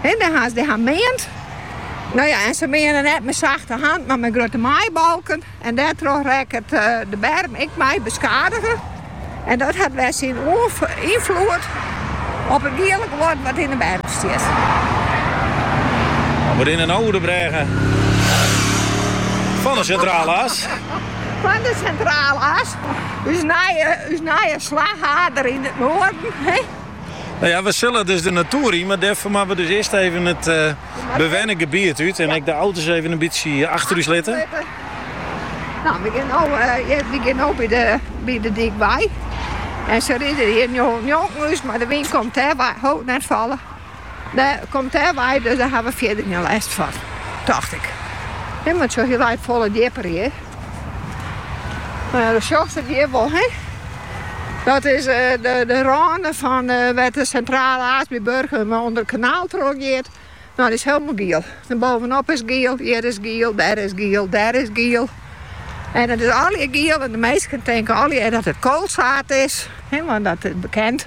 En dan ha se dan meand. No ja, en se meane net mei sachte hand, mar mei grutte maaibalken. En dêrtroch rekket de berm ek mei beskadige. En dat hat wer syn ynfloed op it giele wurden wat yn de berm stiet. Fan de Sintrale As. Fan de Sintrale As, ús nije slachier yn it noarden. No ja, we sille dus de natoer yn, mar dêrfoar moatte we dus earst even it bewenne gebiet út en ek de auto's even in bytsje achter ús litte. No, we gean no by de dyk wei en se ride hjir njonken ús, mar de wyn komt dêrwei, ho, net falle, komt dêrwei, dus dêr ha we fierder gjin lêst fan, tocht ik. Him, want sjoch, hy leit folle djipper hjir. Nou ja, dan sjochst it hjir wol, hè? Dat is eh, de, de râne fan eh, wêr't de Sintrale As by Burgum eh, ûnder it kanaal troch giet. Nou, dat is hielemaal giel. En boppe-op is giel, hjir is giel, dêr is giel, dêr is giel. En dat is allegear giel en de minsken tinke allegear dat it koalsied is. Hè, want dat is bekend.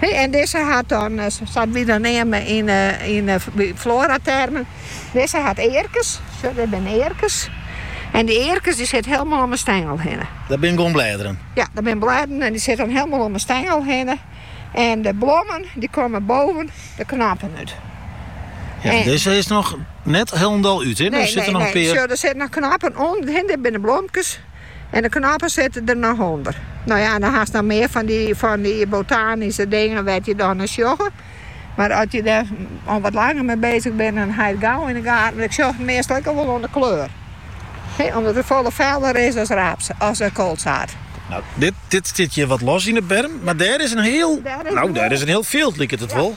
En dizze hat dan, dat wy dan neame yn floaratermen, dizze hat earkes. Sjoch, dit binne earkes. En dy earkes dy sitte hielendal om 'e stengel hinne. Dat binne gewoan blêden? Ja, dat binne blêden en dy sitte dan hielendal om 'e stengel hinne. En de blommen dy komme boppe de knoppen út. Ja, dizze is noch net hielendal út, hé? Der sitte noch in pear. Sjoch, der sitte noch knoppen oan. Dit binne blomkes. En de knoppen sitte der noch ûnder. No ja, dan hast noch mear fan dy fan dy botanyske dingen wêr't je dan nei sjogge. Mar as je der al wat langer mei bezig binne, dan ha je it gau yn de gaten. Ik sjoch it meastal ek al wol oan de kleur. He, omdat it folle feller is as, as koalsied. Dit stiet hjir wat los yn de berm, mar dêr is in hiel, no dêr is in hiel fjild liket it wol.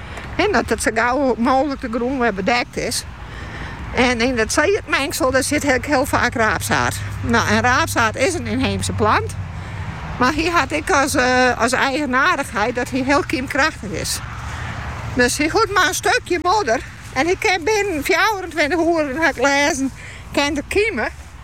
en dat it sa gau mooglik de grûn wer bedekt is. En yn dat siedmingsel dêr sit ek hiel faak raapsied. No, en raapsied is in ynheemse plant, mar hy hat ek as, eh, as eigenaardigheid dat hy hiel kymkrachtich is. Dus hy hoecht mar in stukje modder en hy kin binnen fjouwerentweintich oere, dat ha ik lêzen, kin er kyme.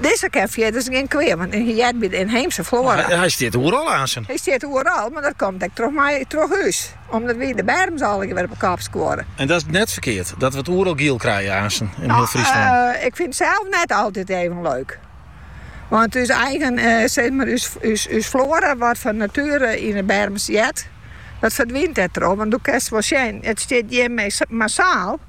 Dizze kin fierders gjin kwea, want hy heart by de ynheemse floara. Hy stiet oeral aansen. Hy stiet oeral, mar dat komt ek troch my troch ús, omdat wy de berms allegear op 'e kop skuorre. En dat is net ferkeard, dat we it oeral giel krije aansen yn hiel Fryslân. Ik fyn it sels net altyd even leuk. Want ús eigen, zeg mar ús floara wat fan natuere yn 'e berms heart, dat ferdwynt dêrtroch. Want do kinst wol sjen, it stiet hjir massaal.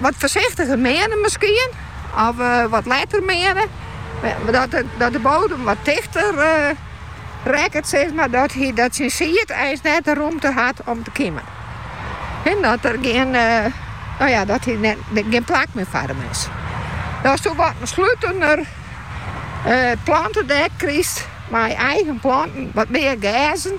wat foarsichtiger meane miskien of wat letter meane. Dat de bodem wat tichter rekket sis mar dat hy dat syn sied eins net de rûmte hat om te kimen. En dat der gjin no ja dat der gjin plak mear foar him is. As do wat in slutener plantedek krichst mei eigen planten wat mear gerzen.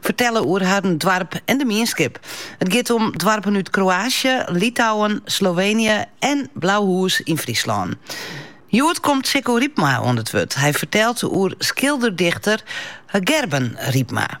fertelle oer harren doarp en de mienskip. It giet om doarpen út Kroaasje, Litouwen, Sloveenje en Blauhûs yn Fryslân. Hjoed komt Sikko Rypma oan it wurd. Hy fertelt oer skilder-dichter Gerben Rypma.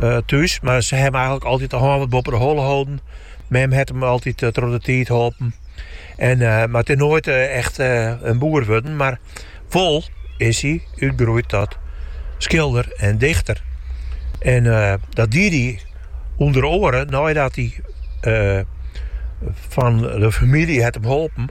eh, thús, mar se hawwe him eigentlik altyd de hân wat boppe de holle holden. Mem het him altyd uh, troch de tiid holpen. En, uh, mar it is noait uh, echt uh, in boer wurden, mar wol is hy útgroeid tot skilder en dichter. En uh, dat die hy ûnder oaren neidat hy uh, fan de famylje het him holpen.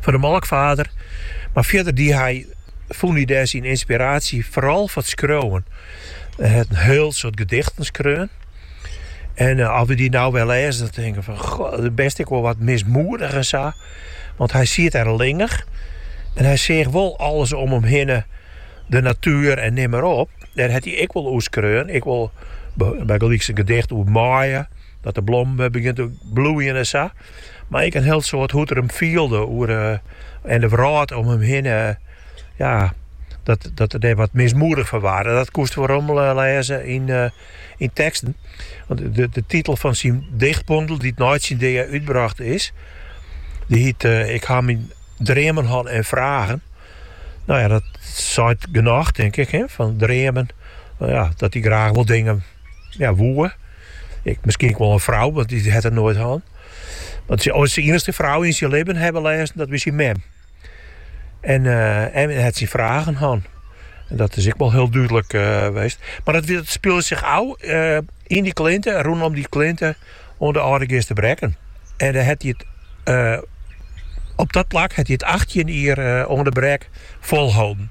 fan de molkfarder, mar fierder die hy fûn hy dêr syn ynspiraasje foaral foar it skriuwen. Hy hat in hiel soad gedichten skreaun en as we dy no wer lêze dan tinke we fan goh, it is bêst ek wol wat mismoedich en sa, want hy siet der allinnich en hy seach wol alles om him hinne, de natuer en nim mar op. Dêr hat hy ek wol oer skreaun, ek wol bygelyks in gedicht oer maaie, dat de blommen wer begjinne te bloeien en sa. Mar ek in hiel soad hoe't er him fielde oer en de wrâld om him hinne. Ja, dat, dat er der wat mismoedich fan waarde. Dat koest werom lêze yn, uh, yn teksten. Want de, de titel fan syn dichtbondel, dy't nei syn dea útbrocht is, dy hjit eh, Ik ha myn dreamen hân en fragen. No ja, dat seit genôch, denk ik, hè, fan dreamen. No ja, dat hy graach wol dingen ja, woe. Ek, miskien ek wol in frou, want dy hat er noait hân. Want syn iennichste frou yn syn libben ha we lêzen, dat wie syn mem. En en hy eh, hat syn fragen hân. En dat is ek wol hiel dúdlik eh, west. Mar dat, dat spile sich ôf eh, yn dy klinte, rûnom dy klinte, oan de Aldegeaster Brekken. En dan het hy it, eh, op dat plak het hy it 18 jier uh, oan de Brek folholden.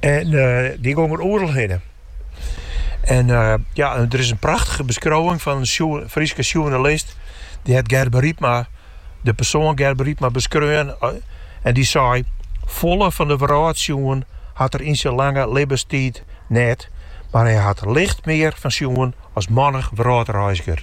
En dy gong er oeral hinne. En ja, der is in prachtige beskriuwing fan in Fryske sjoernalist. Dy hat Gerben Rypma, de persoan Gerben Rypma beskreaun. En dy sei, folle van de wrâld sjoen hat er yn syn lange libbenstiid net, mar hy hat licht mear fan sjoen as mannich wrâldreizger.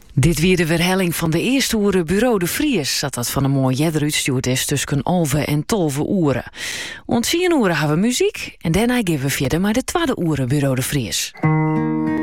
Dit wie de werhelling fan de earste oere Buro de Vries, sa't dat fan 'e moarn earder útstjoerd is tusken alve en tolve oere. Oant tsien oere hawwe wy muzyk en dêrnei geane wy fierder mei de twadde oere Buro de Vries.